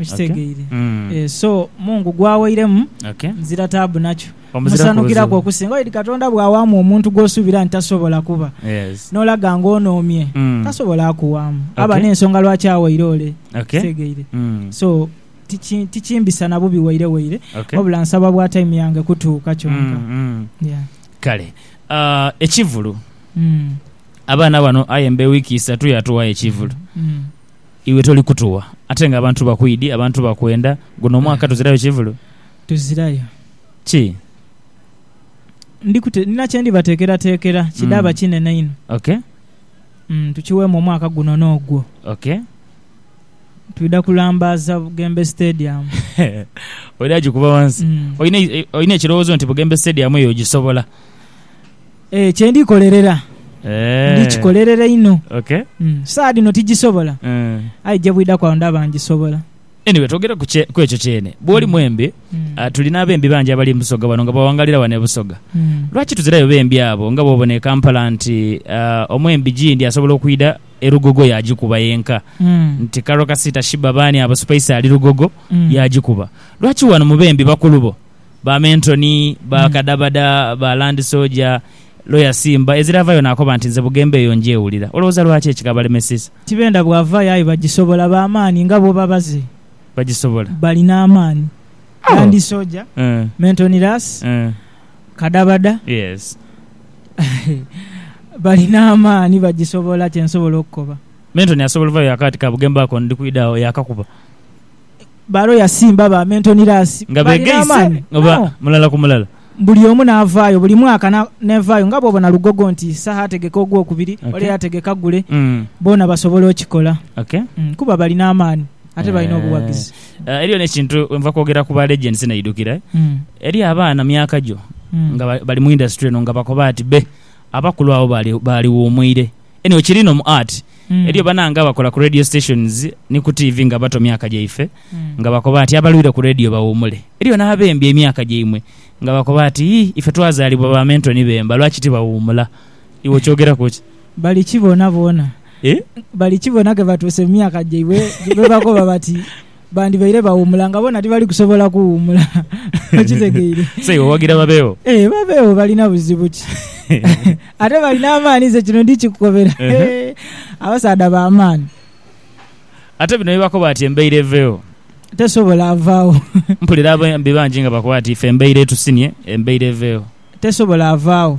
Okitegeire? Okay. Mm. Eh, so Mungu gwawairemu Okay. nzira taabu nakyo Omuziraku musanukiraku buzibu. okusinga oidi Katonda bwawaamu omuntu gwosuubira nti tasobola kuba Yes. n'olaga ng'onoomye Mm. tasobola akuwaamu aba Okay. n'ensonga lwaki awaire ole Okay. kitegeire Mm. so tiki- tikimbisa na bubi waire waire Okay. wabula nsaba bwa time yange kutuuka kyonka Mm, mm. Yeah. kale Ah, ekivulu Mm, abaana bano aye mbe wiiki isatu yatuwayo ekivulu mm. Iwe toli kutuwa ate nga abantu bakwidhi, abantu bakwenda. Guno omwaka tuzirayo kivulu? Tuzirayo. Ki? Ndi kute, nina kye ndibateekerateekera kidhaaba mm. kinene inho. Okay. Mm, tukiweemu omwaka guno n'ogwo. Okay. Twidha kulambaaza Bugembe Stadium. Oidha gikuba wansi. Mm. Olina ekirowoozo nti Bugembe Stadium eyo ogisobola? Kye ndikolerera ndikikolerera inho. Saa dhino tigisobola, aye gye bwidhaku agho ndaba ngisobola. Anyway, twogere ku ekyo kyene. Bw'oli mwembi, tuli n'abembi bangi abali e Busoga wano nga bawangalira wano e Busoga. Lwaki tuzirayo bembi abo nga bw'obona e Kampala nti omwembi Gindi asobola okwidha e Lugogo yaagikuba yenka, nti Carol Kasiita, Sheebah baani abo, Spice ali Lugogo yaagikuba. Lwaki wano mu bembi bakulu bo? ba mentoni, ba kadhabada, ba landi soja, loya simba, ezira avayo naakoba nti, Nze Bugembe eyo ngyewulira. Olowooza lwaki ekikabalemesizza? Tibenda bwavayo aye bagisobola. Ba maanhi nga bwoba baze. Bagisobola. Balina amaanhi. Oh. Landi soja, Eh. mentoni lasi, Eh. kadhabada. Yes. Balina amaanhi bagisobola kye nsobola okukoba. Mentoni asobola ovayo yaakoba ati, Ka Bugembe ako ndi kwidha agho, yaakakuba. Balo yasimba ba Mentonirasi nga beegaise oba mulala ku mulala. Buli omu n'avaayo buli mwaka n'evaayo nga bw'obona Lugogo nti Isaha ategeka ogwokubiri ole yategeka gule, boona basobola okikola kuba balina amaani ate balina obuwagizi. Eriyo n'ekintu we nva kwogera ku ba Legends naidhukira, eriyo abaana myaka gyo nga bali mu indasitule eno nga bakoba ati be abakulu abo baaliwuumwire. Anyway kiri no mu art. Eriyo banange abakola ku radio stations ni ku TV nga bato myaka gyaife nga bakoba nti abalwire ku radio bawumule. Eriyo n'abembye emyaka gyaimwe nga bakoba nti yii ife twazaalibwa ba mento ni bemba lwaki tibawuumula. Iwe okyogeraku ki? Bali kibona bona. Bali kibona ke batuuse mu myaka gyaibwe ghe bakoba bati. Bandibaire bawuumula nga boona tibali kusobola kuwuumula. Okitegeire? Say, owagira babeegho. Ee, babeegho balina buzibu ki? Ate balina amaani, nze kino ndikikukobera. Abasaadha ba maani. Ate bino bye bakoba ati embaire eveegho. Tesobola avaagho. Mpulira abembi bangi nga bakoba ati ife embaire etusinye, embaire eveegho. Tesobola avaagho.